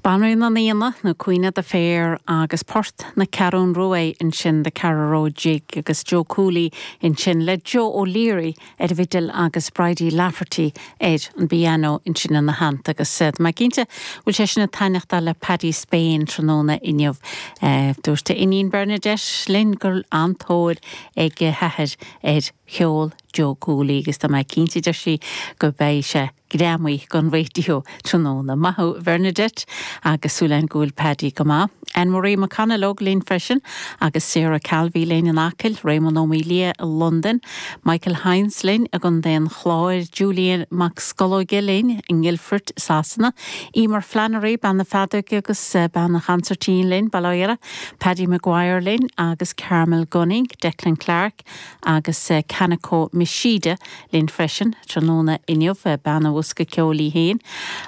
Banríon an Aonaigh, nó Queen of the Fair, agus Port na Ceathrún Rua ansin The Carraroe Jig agus Joe Cooley ansin le Joe O'Leary ar an bhfidil agus Bridie Lafferty ar an bpianó ansin ina theannta agus tá mé cinnte go bhfuil sé sin ag taitneachtáil le Paddy Spain tráthnóna inniu. Dúirt a iníon Bernadette linn go raibh an-tóir ag a hathair ar cheol Joe Cooley agus tá mé cinnte, deir sí, go mbeidh sé greamaithe don raidió. Tráthnóna maith a Bhernadette agus súil againn go bhfuil Paddy go maith. Anne Marie McConalogue linn freisin agus Sarah Calvey linn in Acaill, Réamonn Ó Maolaodha i Londain, Michael Hynes linn i gContae an Chláir, Julian Mac Scolóige linn i nGuildford i Sasana, Eimear Flannery, bean na feadóige agus bean an chonsairtín linn bail ó Dhia uirthi, Paddy McGuire linn agus Carmel Gunning, Declan Clark. agus Kanako Machida linn freisin tráthnóna inniu, bean an bhosca ceoil í féin,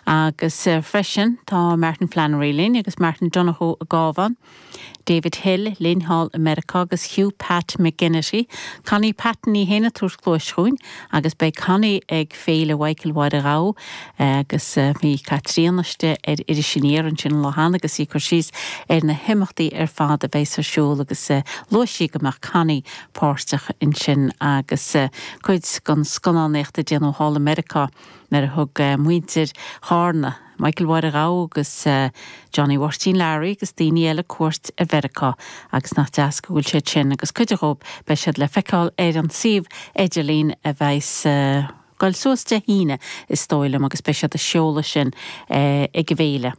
agus freisin tá Martin Flannery linn agus Martin Donohoe i gCabhán, David Hill linn thall i Meiriceá agus Hugh Pat McGinnity, Connie Patton í féin ag tabhairt cluais dhúinn. Agus beidh Connie ag Féile Mhichael Mháire Ghabha agus bhí Caitríona istigh ar Iris Aniar ansin an lá cheana agus í ag cur síos ar na himeachtaí ar fad a bheas ar siúl agus luaigh sí go mbeadh Connie páirteach ansin agus cuid den scannánaíocht a déanadh thall i Meiriceá nuair a thug muintir Chárna Michael Mháire Ghabha agus Johnny Mháirtín Learaí agus daoine eile cuairt ar Mheiriceá agus nach deas go bhfuil siad sin agus cuid dhóib beidh siad le feiceáil ar an suíomh idirlín a bheas ag goil suas Dé hAoine is dóigh liom agus beidh siad á seoladh sin ag an bhféile.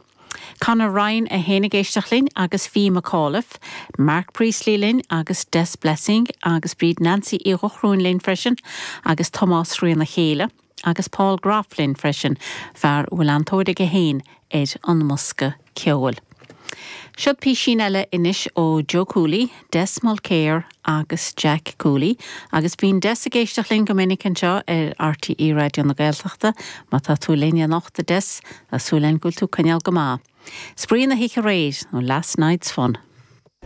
Conor Ryan é féin ag éisteacht linn agus Fee McAuliffe, Mark Priestley linn agus Des Blessing agus Bríd Nancy Uí Dhochrúin linn freisin agus Tomás Thríona Chéile. agus Paul Groff linn freisin, fear a bhfuil an-tóir aige féin ar an mbosca ceoil. Seod písín eile anois ó Joe Cooley, Des Mulkere agus Jack Cooley, agus bíonn Des ag éisteacht linn go minic anseo ar RTÉ Raidió na Gaeltachta, má tá tú linn anocht, a Des, tá súil againn go bhfuil tú ag coinneáil go maith. Spraoi na hoíche aréir, nó last night's fun.